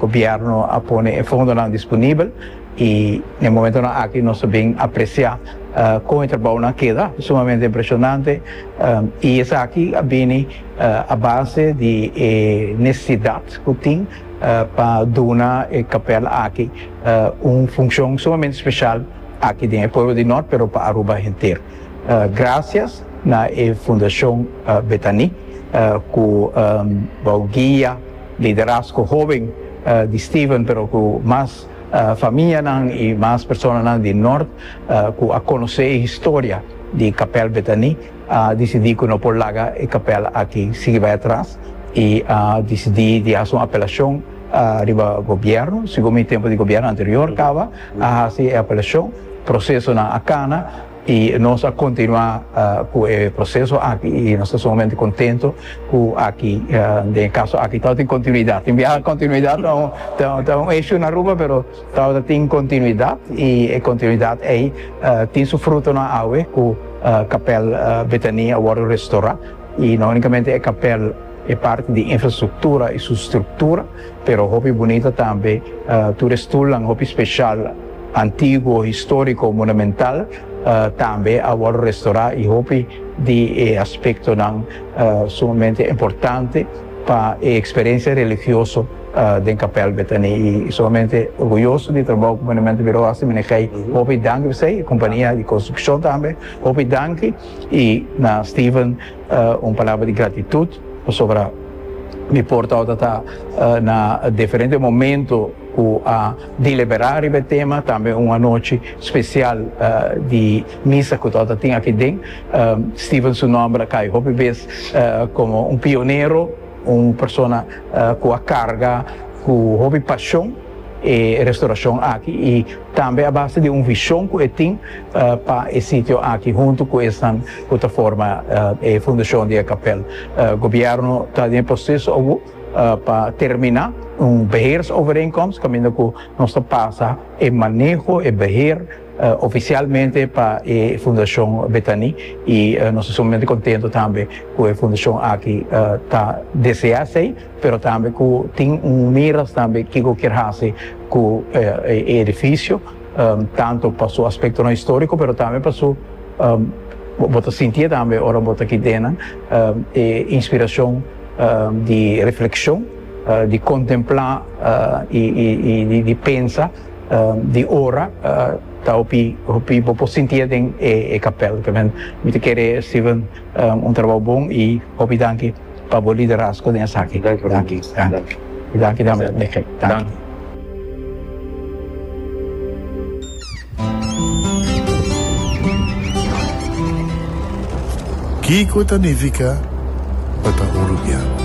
Gobièrnu a pone e fondonan disponibel i na e momentonan aki nos ta bin apresiá kon e trabounan keda sumamente impreshonante i esaki a bini a base di e nesesidat ku tin pa duna e kapèl aki un funshon sumamente speshal aki den e pueblo di Nort pero pa Aruba henter. Grasias na e Fundashon Betani ku wou guia. liderazgo hoben di Stephen pero ku mas famianan i mas personanan di nort ku a konosé e historia di Kapèl Betani a disidí ku no por laga e kapèl aki sigui bai atras i a disidí di hasi un apelashon riba gobièrnu. Sigur mi tempu di gobièrnu anterior kaba a hasi e apelashon, prosesonan a kana. Y nos a continua cu e proceso aki y nos ta sumamente contento cu aki den e caso aki tawata tin continuidad. Tin biaha continuidad ta un issue na Aruba pero tawata tin continuidad y e continuidad ey tin su frutonan awe cu Kapel Betania a wordo restora y no unicamente e kapel e parti di infrastructura y su structura. Pero hopi bunita tambe, tur e stulnan hopi special, antiguo, historico, monumental, tambe a worde restora y hopi di e aspectonan sumamente importante pa e experiencia religioso den Capel Betani y sumamente orguyoso di e trabou cu Monumento Bureau a haci manejey, hopi danki pa esey, e compania di construccion tambe hopi danki y na Steven. Un palabra di gratitud pasobra mi por tawata ta na diferente momento cu a delibera riba e tema, tambe un anochi special di misa cu tawata tin aki den. Steven su nomber a cay hopi bes como un pionero, un persona cu a carga cu hopi pasion. e restauracion aki y tambe a base di un vision cu e tin pa e sitio aki hunto cu esnan cu ta forma e fundacion di e capel. Gobierno ta den e proceso awo pa termina un beheersovereenkomst caminda cu nos ta pasa e maneho, e beheer, oficialmente pa e fundacion Betani y nos ta sumamente contento tambe cu e fundacion aki ta desea esey. pero tambe ku tin un miras tambe kiko kier hasi ku e edifisio, tantu pa su aspektonan históriko, pero tambe pa su, bo ta sintié tambe ora bo ta kité nan, e inspirashon di reflekshon, di kontemplá i di pensa, di ora, ta hopi bo por sintié den e kapèl. Mi ta kere, Steven. Un trabou bon y hopi danki pa bo liderazgo den esaki. Danki Rudy. Danki. Y danki tambe pa Miguel. Danki. Kiko ta nifica pa ta Uruguiano?